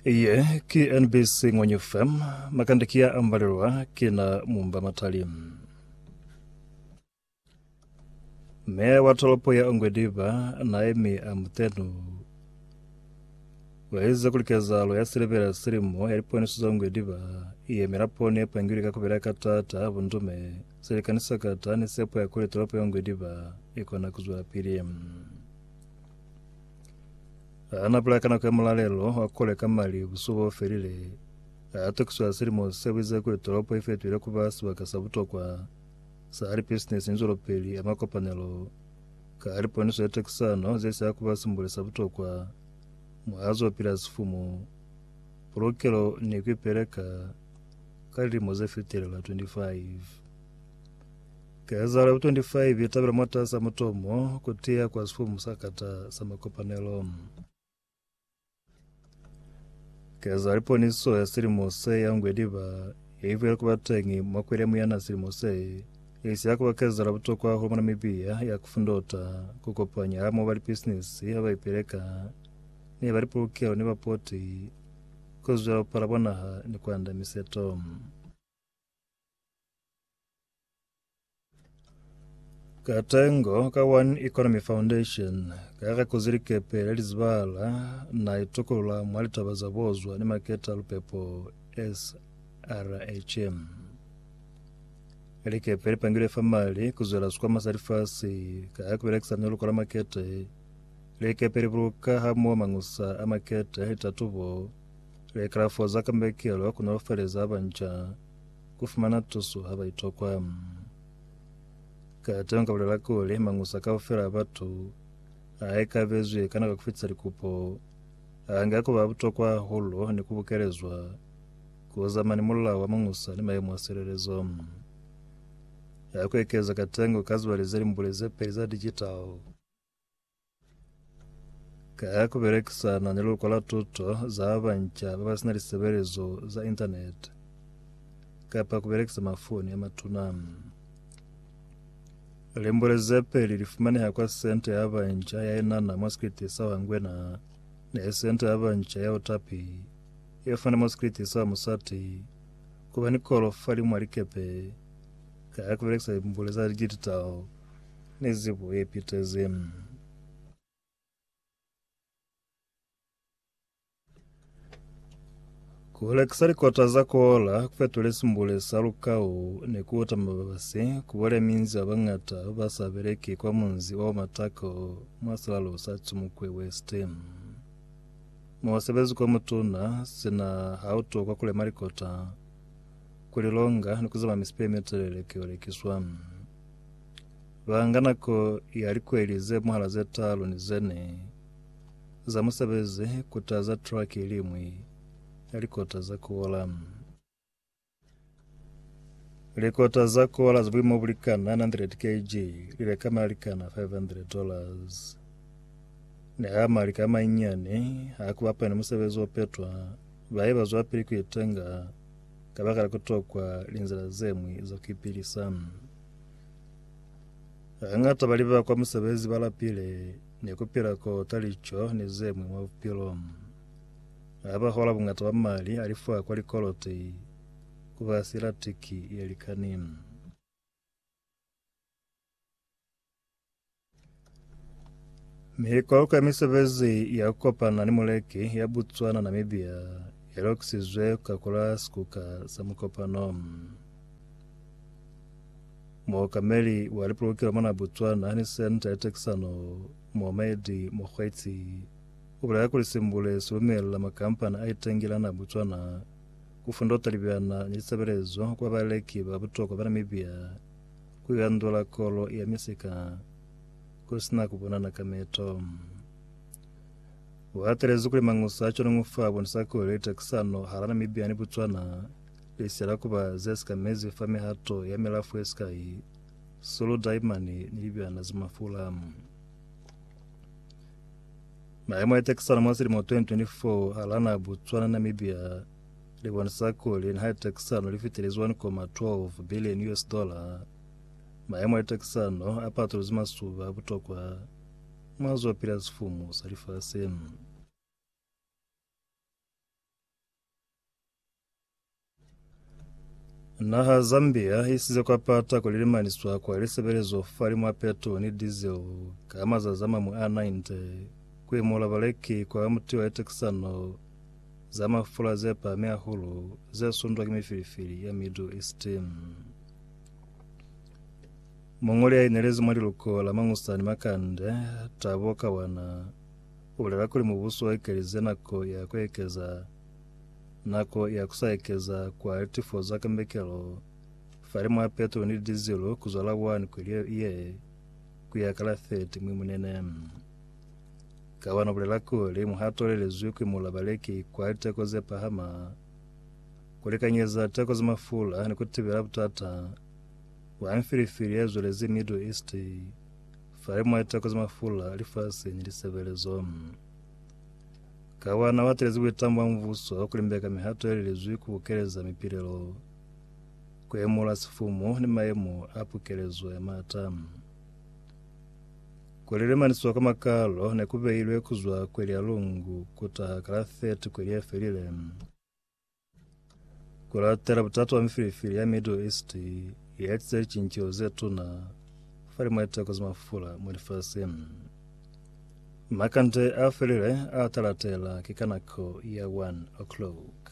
Iye ki NBC Ngwenyu FM, makande ki ya ambalelwa ki na mumba matali. Meya wa tolopo ya Ongwediba Naemi Amutenu waize kuli kezahalo ya silebela silimo ya liponiso za Ongwediba i yemela poni ye pangilwe ka kubela ka taata, bundume, silikani sa kata ni sepo ya kuli tolopo ya Ongwediba ikona kuzwelapili. Ha na pula ka nako ya mulalelo wa kole ka mali busuku bo felile, ha tokiswa silimo se buize kuli tolopo i fetohile ku ba sibaka sa butokwa sa lipisinisi ni zwelopeli ya makopanelo ka liponiso ya tokisano ze sa ku ba simbule sa butokwa mwa zo pila sifumu, pulukelo ni ku ipeleka ka lilimo ze fetelela 25. Kezalo 25 itabela mwataza mutomo kutiya kwa sifumu sa kata sa makopanelo. Kezalo liponiso ya silimo se ya ngwe liba ye ibuela kuba teñi mwa kweli ya muyana silimo se, isiya kuba kezalo butokwa hahulu mwa Namibia ya kufundota, kukopanya hamoho ba lipisinisi haba ipeleka ni ba lipulukelo ni bapoti, kuzwela bupala bwa naha ni kuanda miseto. Katengo ka One Economy Foundation kare kuze likepe le lizibala na itukula mwa litaba za bozwa ni maketa lupepo SRHM. Likepe lipangilwe fa mali kuzwela sikwama sa lifasi ka kubelekisa neluko la makete. Likepe libuluka hamoho mangusa a makete, litatubo, Likalafo za Kambekelo ku Naufeleeza Banca ku Fumana Tuso ha ba Itokwa. Ka teo nka bulela kuli, mañusa kaufela a batu a ikabezwi ka nako ya ku fitisa likupo a nga ku ba butokwa hahulu ni ku bukelezwa ku zama ni mulao wa mañusa ni mayemo a silelezo. Ha ku ekeza katengo ka zibali ze limbuli ze peli za digital, Ka ku belekisana ni Luluko la Tuto za ba Banca ba ba si na lisebelezo za Intaneti kapa ku belekisa mafoni a matuna. Limbule ze peli li fumaneha kwa Senta ya Banca ya Inana mwa sikriti sa Wangwena ni Senta ya Banca ya Otapi ye fumane mwa sikriti sa Musati ku ba ni kolo fa limwa likepe ka ku belekisa limbule za digital. ni zibo ye pitezeng. Ku hulekisa likota za kola ku fetule simbule sa lukau ni ku uta mababasi ku bole minzi ba bañata ba sa beleki kwa munzi wa Omatako mwa silalo sa Chimukwe West. Musebezi kwa mutuna sina ha u tokwa ku lema likota, ku li longa ni ku zama misipi ye mitelele ki yo lekiswa. Ba nga nako ya likweli ze mwahala ze talu ni ze ne za musebezi ku taza traki i liñwi ya likota za kola. Likota za kola za buimo bu likana 900 kg li leka mali a likana $500. Niha mali ka manyinyani ha ku bapanya ni musebezi o petwa, ba ye ba zwapili ku itenga Kabakala kutokwa linzila zemwi za kuipilisa, hañata bali ba kwa musebezi balapile ni kupila kota lico ni zemwi mwa bupilo. Habahola bungata bwa mali alifwa kwa likoloti kuba silatiki yelikani. Mihikoko ya misebezi ya kopana ni muleki ya Botswana Namibia ya lokisizwe ku kakola sikuka sa mukopano. Mookameli wa lipolokelo mona Botswana ni senta ya tekisano Mohammed Mokgweetsi u bulela kuli simbule si lumella makampani a itengelana Botswana ku fundota libyana ni lisebelezo ku ba baleki ba butokwa ba Namibia ku yandula kolo ya misika ku sina ku bonana ka meto. Wa telezi kuli mangusa a conongo fa bonisa kuli litakisano hala Namibia ni Botswana li siyela kuba ze sikamezi fa mihato ya milafu ye sikai, sulu, daimani ni libyana za mafula. Maemo a litakisano mwa silimo 2024 hala naha Botswana ni Namibia li bonisa kuli niha litekisano li fitile Z1.12 billion US dollar, mayemo a litekisano a patuluzi masuba a butokwa mwa zo pila sifumu sa lifasi. Naha Zambia i size kwa pata kuli limaniswa kwa lisebelezo fa li mwa petrol ni diesel ka mazazi a mamu a 90 ku imula baleki kwa mutiwa litekisano za mafula ze pahami hahulu ze sundwa ki mifilifili ya Middle East. Muñoli ya inelezi mwa liluko la Mangusani Makande, Tabo Kawana, u bulela kuli mubuso u ekelize nako ya ku ekeza nako ya ku sa ekeza kwa litifo za kambekelo fali mwa petroli ni dizilu ku zwala 1 kweli ye ku ya ka la 30 Mwimunene. Kabana ubulela kuli, Muhato ulelezwi ki mula baleki kwa liteko ze pahama ku lekanyeza teko za mafula ni ku tibela butata bwa mfilifili ye zwelezi Middle East falimwa liteko za mafula lifasi ni lisebelezo. Kabana uatelezi buitamo bwa mubuso ku limbeka mihato ye lelezwi ku bukeleza mipilelo, ku emula sifumu ni maemo a pukelezo ya maata. Kweli le maniswa ka makalo ne ku beilwe ku zwa kweli ya lungu ku taha ka la 30 kweli ye felile. Ku latela butata bwa mifilifili ya Middle East ye etize licinceho ze tuna fa limo ye teko za mafula mwa lifasi. Makande a felile a ta latela ki ka nako ya 1 o'clock.